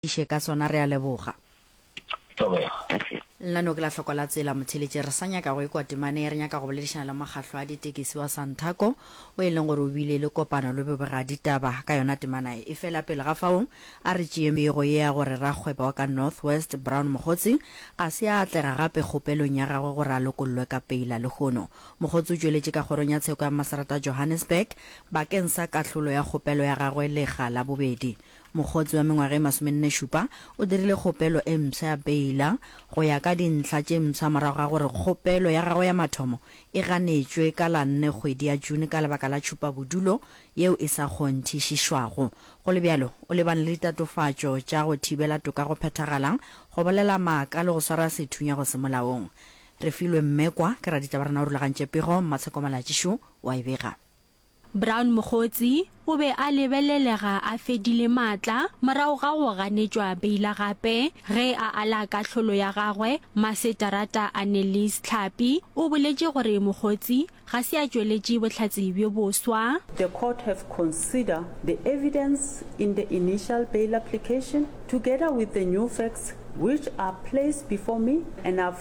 iše ka sona re a leboga. Lna no ke la hloko la tsela motheletše re sa nyaka go ekwa temane re nyaka go boledišana le mokgahlo a ditekesi wa Santaco o e leng gore o bile le kopano le bobega ditaba ka yona temanaye efela pele ga fao a re tšee pego ye ya gore rakgwebo wa ka North West Brown Mogotsi ga se a atlega gape kgopelong ya gagwe gore a lokollwe ka peila lehono Mogotsi o tšweletše ka kgorong ya tsheko ya Maserata Johannesburg bakeng sa kahlolo ya kgopelo ya gagwe lega la bobedi Mokgotsi wa mengwaga e masomenne-šupa o dirile kgopelo e mpsha ya beila go ya ka dintlha tše mpsha morago ga gore kgopelo ya gagwe ya mathomo e ganetšwe ka la nne kgwedi ya June ka lebaka la tšhupabodulo yeo e sa kgonthišišwago. Go le bjalo, o lebane le ditatofatšo tša go thibela toka go phethagala, go bolela maaka le go swara sethunya go se molaong. Refilwe Mmekwa ke raditaba rena o rulagantše pego, Mmatsheko Malatšišu o a e bega. Brown Mokgotsi o be a lebelelega a fedile maatla morago ga go ganetšwa beila gape ge a ala kahlolo ya gagwe. Maseterata Annelies Tlhapi o boletše gore Mokgotsi ga se a tšweletše bohlatse bjo boswa. The court have consider the evidence in the initial bail application together with the new facts which are placed before me and I have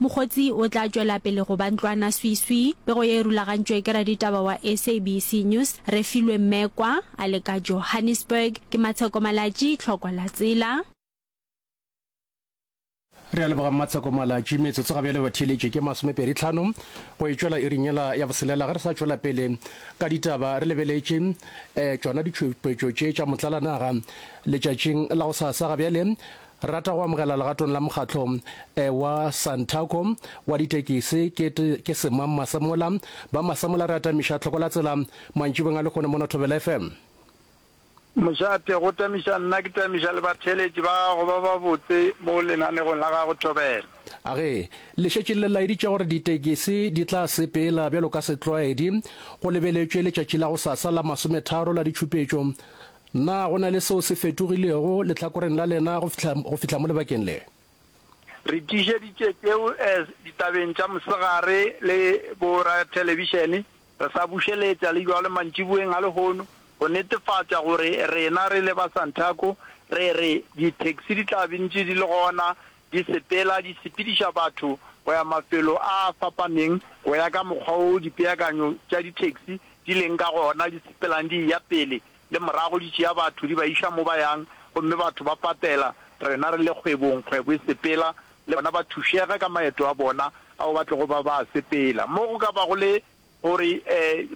Mokgotsi o tla tšwela pele go ba ntlwana swiswi. Pego ye e rulagantšwe ke raditaba wa SABC News, Refilwe Mmekwa, a le ka Johannesburg. Ke Matsheko Malatji, Tlhoko la Tsela. Re a leboga Mmatsheko Malatji. Metsotso ga bjale e ba theeletše ke masomepedi tlhano go e tšwela iring yela ya boselela. Ge re sa tšwela pele ka ditaba, re lebeletše tšona ditšhupetšo tše tša motlalanaga letšatšing la gosasa. Ga bjale Re rata go amogela legatong la mokgatlo eh, wa Santaco wa ditekisi ke, ke Semang Masemola. Ba Masemola re atamiša tlhoko la tsela mantšibeng a lekgone mono Thobela FM. Mošate, go tamiša nna ke tamiša le batheeletši ba gago ba babotse mo lenanegong la gago Thobela. A re, le šetše le laeditše gore ditekisi di tla sepela bjalo ka setlwaedi, go lebeletšwe letšatši la gosasa la masometharo la ditšhupetšo Na go na le seo se fetogilego lehlakoreng la lena go fihla, go fihla mo lebakeng le? Re tiišeditše tšeo eh, ditabeng tša mosegare le borathelebišene, re sa bušeletša le bjalo mantšiboeng a lehono, go netefatša gore rena re le ba Santaco re re dithekisi di tla be ntše di le gona di sepela di sepediša batho go ya mafelo a a fapaneng go ya ka mokgwa wo dipeakanyo tša dithekisi di leng ka gona, di sepelang di eya pele. le morago di tšea batho di ba iša mo ba yang, gomme batho ba patela, rena re le kgwebong, kgwebo e sepela, le bona ba thušega ka maeto a bona ao ba tlogo ba ba a sepela. Mo go ka bago le gore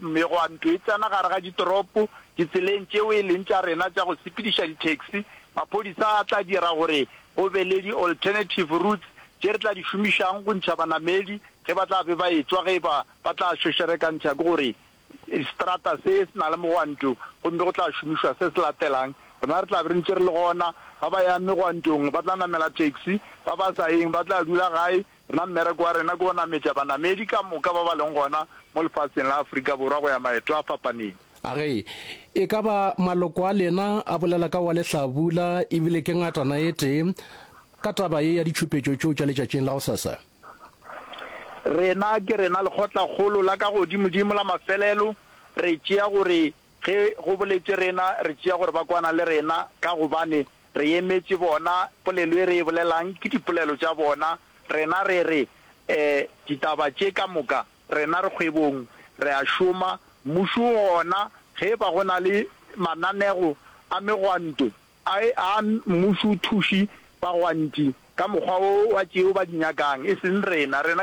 megwanto e tsena gare ga ditoropo, ditseleng tšeo e leng tša rena tša go sepediša di-taxi, maphodisa a tla dira gore go be le di-alternative routes tše re tla di šomišang go ntšha banamedi ge ba tla be ba e-tswa ge e ba ba tla šošerekantšha ke gore Seterata se se na le megwanto gomme go tla šomišwa se se latelang. Rena re tla be re ntše re le gona. Ba ba yang megwantong ba tla namela taxi, ba ba sa yeng ba tla dula gae. Rena mmereko wa rena ke go nametša banamedi ka moka ba ba leng gona mo lefaseng la Afrika Borwa go ya maeto a fapaneng. A re, E ka ba maloko a lena a bolela ka wa lehlabula e bile ke ngatana e tee ka taba ye ya ditšhupetšo tšeo tša letšatšing la gosasa? Rena, ke rena lekgotlakgolo la ka godimodimo la mafelelo, re tšea gore ge go boletše rena, re tšea gore ba kwana le rena, ka gobane re emetše bona. Polelo e re e bolelang ke dipolelo tša bona. Rena re re, E, ditaba tše ka moka, rena re kgwebong, re a šoma, mmušo o gona, ge e ba go na le mananego a megwanto, A e a mmušothuši bagwantši ka mokgwa wo wa tšeo ba di nyakang, e seng rena. Rena